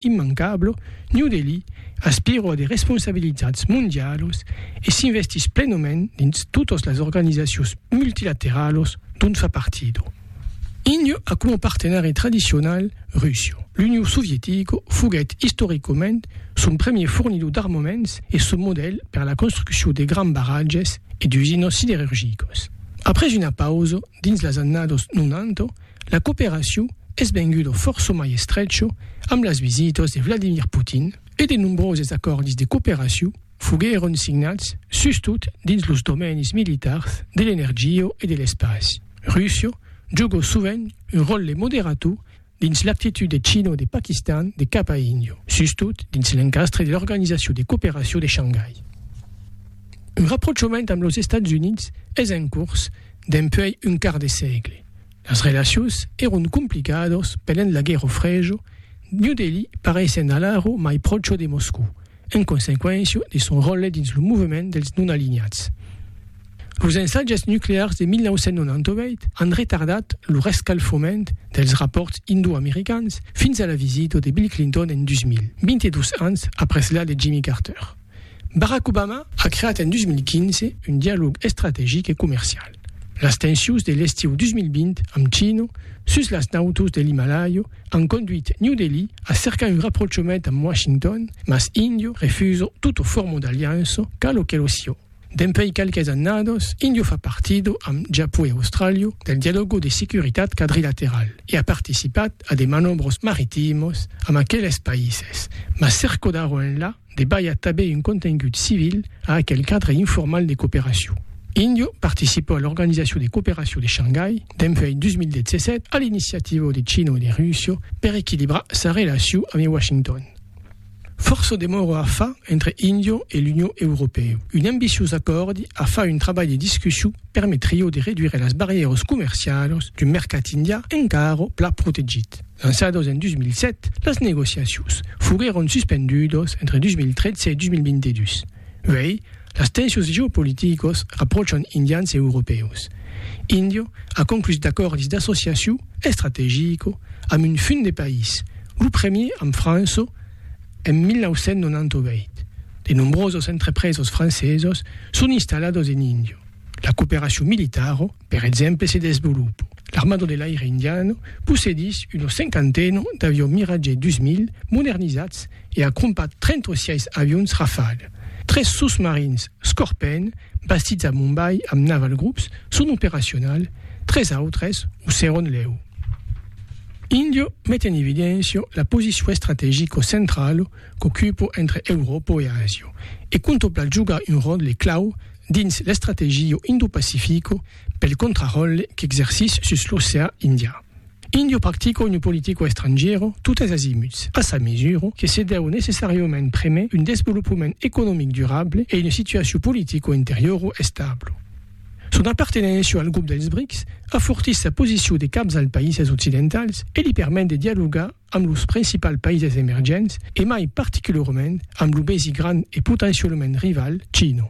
Immancable, New Delhi aspira a de responsabilitats mondialos e s'investís plenement dins totas las organizacions multilateralos dont fa partida. Índia a coma partenari tradicional Russia. L'Union Sovietica foguèt istoricament son premier fornidor d'armaments e son modèl per la construccion de grands barratges e d'usinas siderurgicas. Après una pausa dins las annadas 90, La cooperacion es venguda fòrça mai estrecha amb las visitas de Vladimir Putin e de nombroses acòrdis de cooperacion foguèron signats sustot dins los domènis militars de l'energia e de l'espaç. Russia joga sovent un ròtle de moderator dins l'actitud de China o de Paquistan de cap a Índia, sustot dins l'encastre de l'Organizacion de Cooperacion de Shangai. Un raprochament amb los Estats Units es en cors dempuèi un quart de sègle. Las relacions èron complicadas pendent la Guèrra Freja, New Delhi paraissent alara mai pròcha de Moscòu, en consequéncia de son ròtle dins lo movement dels non-alinhats. Los ensatges nuclears de 1998 an retardat lo rescalfament dels rapòrts indo-americans fins a la visita de Bill Clinton en 2000, 22 ans après la de Jimmy Carter. Barack Obama a creat en 2015 un dialòg estrategic e comercial. Las tensions de l'estiu 2020 amb China sus las nautas de l'Himalaia an conduit New Delhi a cercar un raprochament amb Washington, mas India refusa tota forma d'aliança, qu'a lo que lo siá. Dempuèi qualques annadas, India fa partida, amb Japon e Austràlia, del dialòga de securitat quadrilateral e a participat a de manòbras maritimas amb aqueles païses, mas cerca d'ara enlà, Debalha tanben un contengut civil a aquel cadre informal de cooperacion. Indio participò a l'Organizacion de Cooperacion de Shangai dempuèi 2017 a l'iniciativa de China o de Russia per equilibrar sa relacion amé Washington. Fòrça demòra a far entre Indio e l'Union Europèu. Un ambiciós acòrdi a far un trabalh de discussion permetríeu de reduire las barrièras comercialas d'un mercat indià encara pla protegit. Lançadas en 2007, las negociacions foguèron suspendudas entre 2013 e 2022. Uèi, las tensions geopoliticas rapròchan indians e europèus. Índia a conclús d'acòrdis d'associacion estrategica amb un funt de país, lo premier amb França, en 1998, de nombrosos entrepresos francesos son installados en Indio. La cooperacion militaro, per exemple, se desvolopo. L'Armado de l'Aire Indiano possedís una cinquantena d'avions Mirage 2000 modernizats e a crompat 36 avions Rafale. Tres sosmarins Scorpèn, bastits a Mumbai amb Naval Groups, son operacionals, tres autres o seron lèu. Indio met en evidencio la posicion estrategico centralo qu'ocupo entre Euròpo e Asio e contopla jogar un ròtle clau dins l'estrategio Indo-Pacifico pel contraròtle qu'exercís sus l'oceà Indià. Indio practico una politica estrangièra totes azimuts, a sa mesura que se deu necessàriament premer un desvolopament economic durable e una situacion politico-interiora establa. Son apartenéncia al grop dels BRICS afortís sa posicion de caps als païses occidentals e li permet de dialogar amb los principals païses emergents e mai particularament amb lo besi grand e potencialament rival China.